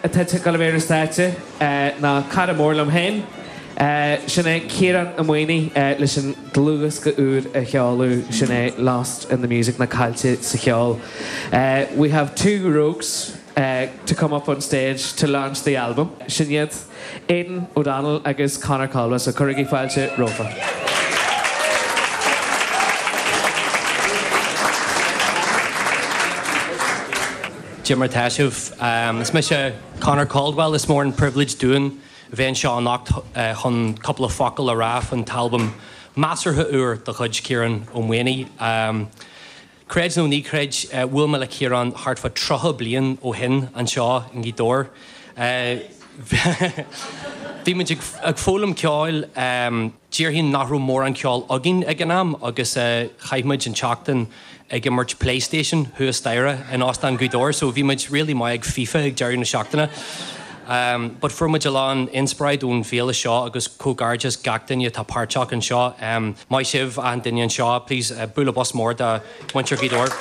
atá ag dul ar bharr an stáitse ná cara mór liom féin, sin é Ciarán Ó Maonaigh leis an dlúthdhiosca úr a sheoladh, sin é Lost in the Music, nó Caillte sa Cheol. We have two rogues to come up on stage to launch the album, sin iad Aidan O'Donnell agus Conor Caldwell, so cuirigí fáilte rompu. Cad é mar tá sibh. Is mise Conor Caldwell. Is mór an pribhléid dúinn a bheith anseo anocht chun cúpla focal a rá faoin t-albam measartha úr de chuid Ciarán Ó Maonaigh. Creid nó ná creid, bhuail mé le Ciarán thart fá 30 bliain ó shin anseo i nGaoth Dobhair. Bhí muid ag foghlaim ceoil. Déarfainn nach raibh mórán ceoil againn ag an am agus chaith muid an tseachtain ag imirt Playstation thuas staighre in Óstán Ghaoth Dobhair so bhí muid really maith ag FIFA ag deireadh na seachtaine. But fuair muid a lán inspiráid ón bhféile seo agus comhghairdeas gach duine atá páirteach anseo. Maith sibh achan duine anseo. Please bualadh bos mór do. Muintir Ghaoth Dobhair.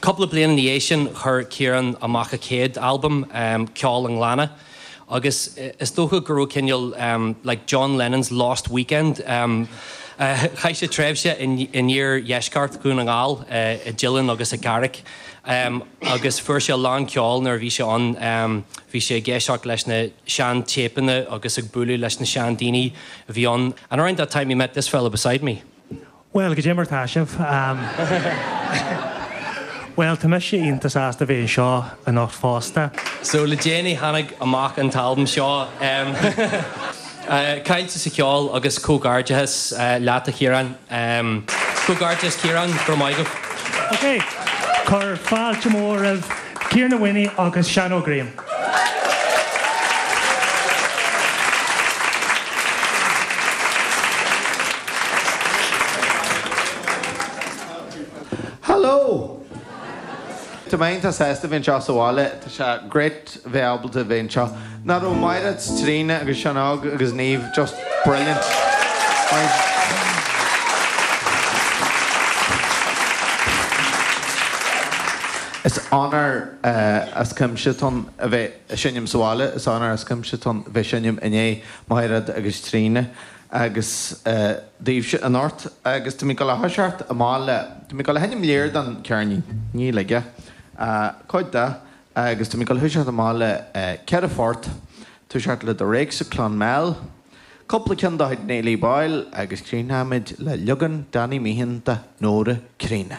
Cúpla bliain ina dhiaidh sin chuir Ciarán amach a chéad albam, Ceol a' Ghleanna, agus is dócha go raibh cineál like John Lennon's Lost Weekend. Chaith sé tréimhse in iardheisceart Dhún na nGall, i dTeileann agus i gCarrick. em agus fuair sé a lán ceoil nuair a bhí sé ann em bhí sé ag éisteacht leis na sean téipeanna agus ag bualadh leis na sean daoine a bhí ann and around that time he met this fella beside me. Bhuel, cad é mar tá sibh. Em bhuel tá mise iontach sásta a bheith anseo anocht fosta. So le déanaí tháinig amach an t-albam seo em. Caillte sa cheol agus comhgairdeachas leat a Chiarán. Comhgairdeas Ciarán, go raibh maith agat. Ok, cuir fáilte mhór roimh Ciarán Ó Maonaigh agus Seán Óg Graham. Hello! Tá mé iontach sásta a bheith anseo sa bhaile. Tá sé great. bheith ábalta a bheith anseo. Nach raibh Maighread 's Tríona agus Seán Óg agus Niamh just brilliant? Is onóir as cuimse dom a bheith ag seinm sa bhaile. Is onóir as cuimse dom a bheith ag seinm i ndiaidh Maighread agus Tríona agus daoibhse anocht agus táimid ag gabháil a thoiseacht i mBaile. Táimid ag gabháil a sheinm lear den cheirnín. Níl aige. Cuid de. Agus tá mé ag dul tús a chur le ceithre phort túiseacht le The Rakes of Clonmel. Cúpla ceann dá chuid Néilí Boyle agus críochnóimid le leagan Danny Meehan de Nóra Críonna.